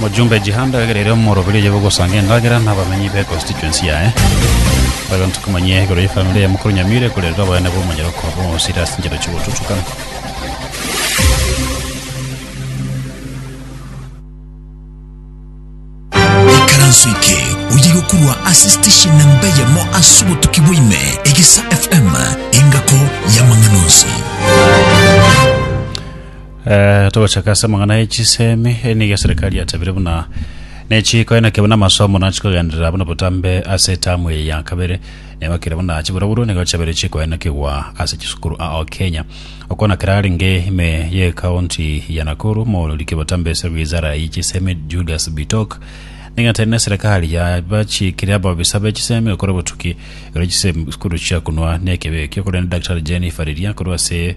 Mojumbe Jihande egere ere omoroberio oye bw'ogosangia endagera n'abamenyi be constituency yaye. Bari banto komanyia igoro ye family ya mokoro Nyamira ekorerera oboyene bwa omonyeroko bwa omosiri ase enchera chi'ogotutukana. Ekaranso eke oye gokurwa ase station na mbe yamo ase obotuki bwa ime egesa FM engako y'amang'ana onsi. Eh, togochaka ase amang'ana e chisemi eh, nigo eserikari yatabire buna nechiko enake buna amasomo nachikogenderera buna botambe ase etamu eye ya kabere nigo kere buna chiburoburo nigo chabere chikoenakigwa ase chisukuru ao Kenya okona kera arenge ime ye kaunti ya Nakuru moororiki botambe ase wizara ye chisemi Julius Bitok nigo ateine serikali yabachikire ababisa be chisemi gokora obotuki ero chisemi sukuru chiakunwa nekebekio korende Daktari Jennifer Riria korwa ase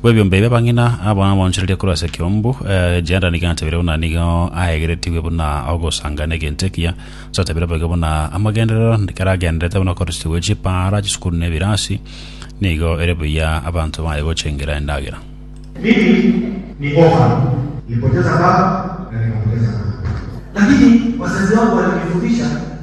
bw'ebiombe ebi abang'ina abo nabaonchorerie korwa ase ekeombu. Jehoiada nigo atabire buna nigo aegeretigwe buna ogosanga n'egento ekiya. Ase atabire boigo buna amagenderero ekero agendererete buna okorusia gwe chipaara, chisukuru, na ebirasi, nigo ere buya abanto baye gochengera endagera. Mimi ni Boha, nilipoteza baba na nikapoteza mama, lakini wazazi wangu walinifundisha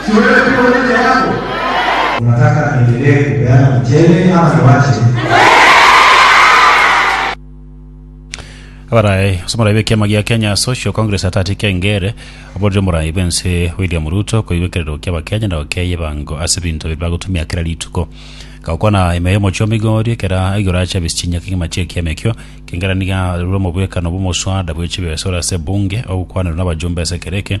Chiweretu bono chiago. Nataka niendelee kupeana mchele ama niwache? Abarae ase omorai b'ekiama gia Kenya Social Congress Atati Keng'ere aborire omorai bw'ense William Ruto koigwa ekerero kia Abakenya na okeyia ebango ase ebinto ebi bagotumia kera rituko. Gakwana ime y'omochie o Migori ekero aigure ache abisi chinyia kegima chi'ekiama ekio, Keng'ere nigo arure omobwekano bw'omoswada bwe chibesa ore ase Bunge ogokwanerwa n'abajumbe ase ekero eke,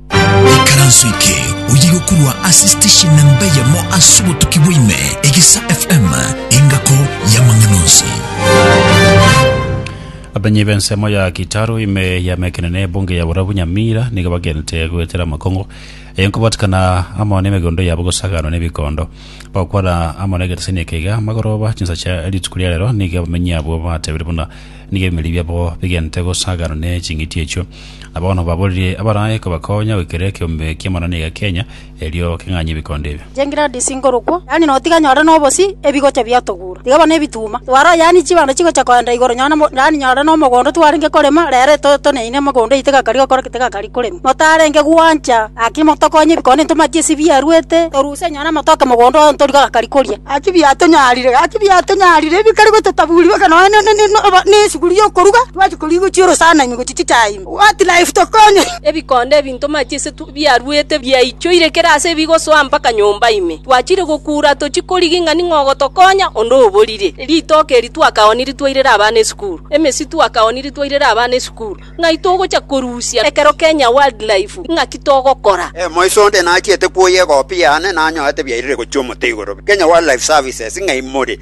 Ekaranso eke oye gokorwa ase station na mbeyemo ase obotuki bwaime egesa FM engako y'amang'ana onsi. Abanyi b'ensemo ya Kitaro ime yamekenene ebunge ya Borabu Nyamira nigo bagente goetera amakongo eye nkobatikana amo n'emegondo yabo gosaganwa n'ebikondo bakwana amo n'egeteseni eke iga amagoroba chinsa chia rituko ria rero nigo abamenyi abo batebire buna Nigo ebimeri biabo bigenete gosaaganwa ne ching'iti echio. Na bono baborerie abarae kobakonya goikera ekeombe ki'amanoni iga Kenya, erio keng'anye ebikondo ebio. Chengiradi chinkorokwo, yaani notiga nyore nobosie, ebigocha biatogura, tiga bono ebituuma, twara yaani chibando chigocha koenda igoro nyore na yaani nyore nomogondo twarenge korema, rero etoyo toneine mogondo eye tigakari gokora ki? Tigakari korema. Notarenge gwancha, gaki motokonye ebikondo ntomatie ase biaruete, toru. Ase enyora amatoke mogondo oye ntorigwe agakari koria. Gaki biatonyarire, gaki biatonyarire, ebi bikare gototaburi boka nonya ne- ne- ne- obo- nesuguri y'okoruga twachi koria gochia orosana ime gochia chichai ime. What life tokonye! Ebikondo ebi ntomache ase tu- biaruete biaichoire kera ase ebigosoa mpaka nyomba ime. Twachire gokuura tochia korigi ng'a ning'o ogotokonya, onde oborire. Ritoke eri twakaoniri twairera abana esukuru. Emesi twakaoniri twairera abana esukuru. Ng'ai togocha korusia ekero Kenya Wildlife? Ng'aki togokora? Moiso onde nachiete kwoyia egopi yane nanyorete biairire gochia omote igoro. Kenya Wildlife Services ng'ai more?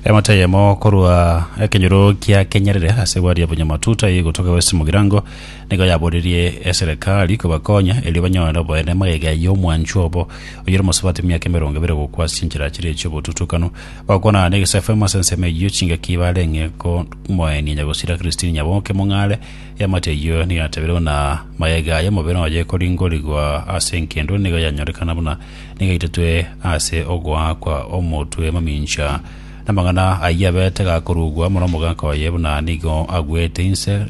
Emate eyemo korwa ekenyoro kia Kenyerere ase egwadi ya Bunyamatuta eye egotoka West Mugirango nigo yaborerie eserekari kobakonya erio banyore oboene magega y'omwanchwa obo oyore omosubati bw'emiaka emerongo ebere gokwa ase chinchera chiria chi'obotutukanu. Bagokonana negesaku amo ase ensemo eyio chingaki barenge komoenia nyagosira Christine Nyaboke Mong'are eamate eyio nigo yatabeirwe buna mayega aya omobere oye ekoringorigwa ase enkendo nigo yanyorekana buna nigo yaitetwe ase ogoakwa omotwe mamincha namang'ana ayio abete gakorugwa muna omogaka oye buna nigo agwete inse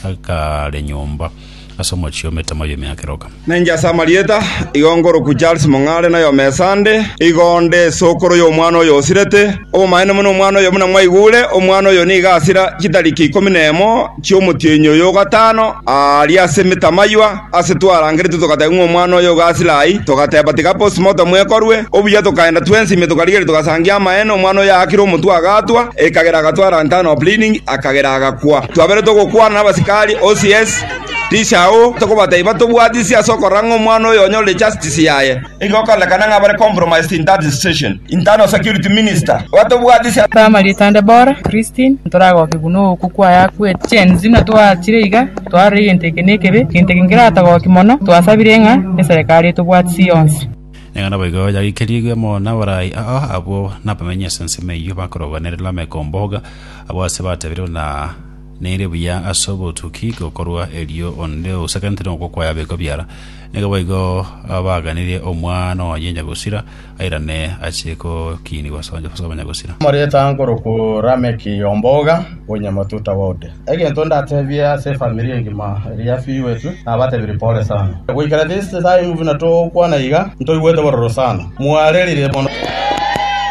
akaare nyomba ase omochie ometemo y'emiaka eroka. Nainche ase amarieta, igo nkorokwa Charles Mong'are na Yomesande, igo nde sokoro y'omwana oyo osirete. Obomaene buna omwana oyo buna mwaigure, omwana oyo nigo asira chitariki ikomi nemo chi'omotienyi oyo o gatano, aaria ase emetamaywa, Ase twarangeretwe togateba ng'a omwana oyo iga asire ai, togateba tiga postmortem ekorwe. Obuya tokaenda twensi ime tokarigeria togasangia amaene, omwana oyo aakire omotwe agatwa, ekagera agatwara lantern of bleeding, akagera agakwa. Twabere togokwana nabasikari, OCS, Tisha, oo, tokobatebia batobwatisie ase okorora ng'a omwana oyo onyorire justice yaye. Igo okoonekana ng'a bare compromised in that institution. Internal security minister, Batobwatisia. Twaamari etande bora Christine ntoragoke buna ookwo kwaye akwete. Gen Z na twaachire iga twarora egento eke nekebe, egento eke nkeratogoki mono, twasabire ng'a eserekari etobwatisie yonsi. Nigo naboigo yagekerigwe amo naborai ao abwo nabamenyi ase ensemo eyio bakorogwa nere Lameko Mboga, abwo ase batebirie buna neire buya ase obotuki gokorwa erio onde ousegentire okwo kwaye abekwe biara. Naboigo abaaganirie Omwana oye Nyagosira airane ache gokiinigwa ase abanyagosira. Omoreta nkorokwo Rameki Omboga o Nyamatuta Ward. Egento ndatebie ase efamiri engima eria yafiiwetwe, nabatebirie pole sana. Goikera this time buna togokwana iga, ntoigwete bororo sana. Mwarerire mono!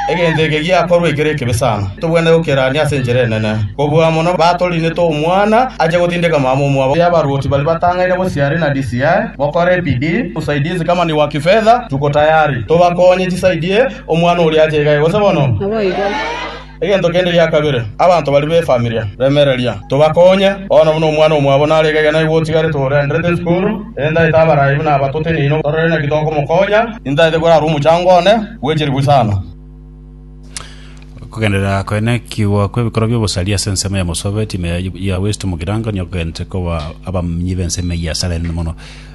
Egento eke giakorwa ekero ekebe sana, tobwenerete gokerania ase enchera enene, kobua amo nabatoriinete omwana ache gotindeka mama omwabo. Abaruoti baria batang'aine bosiari na DCI, mokore ebidii usaidizi kama ni wa kifedha, tuko tayari tobakonye chisaidiye omwana oria ache iga egose bono. Egento kende gia kabere, abanto baria b'efamilia, remereria, tobakonye. Bono buna omwana omwabo nare kegena igo otigarete orenderete esukuru, erinde aete abarai buna aba toteneine torore naki tokomokonya. Nintaete korara omochango one bw'echiribu isano. Okogenderera koenekigwa kw'ebikorwa bi'obosaria ase ensemo ya Mosovet, ime ya West Mugirango, nigo kogentete koba abamnyi b'ensemo eyio ase arende mono.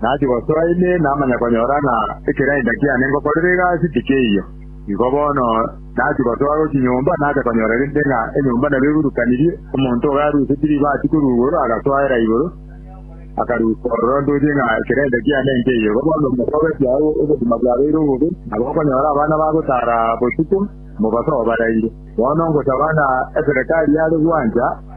Nachi gosoa ime namanya konyora ng'a ekereenda kiane ngokorera egasi tikeiyo. Igo bono nachi gosoa gochia nyomba nacha konyora rende ng'a enyomba nabo egurukanirie, omonto ogo arusetie ribaati korwa igoro agasoera igoro, akarusia ororo ntoche ng'a ekereenda kiane nkeiyo. Igo bono omogogokia oo obogima bwabeire obobe, nabo okonyora abana bagotaara botuko, mobaso obaraire. Bono ngosaba ng'a eserekari yare gwancha.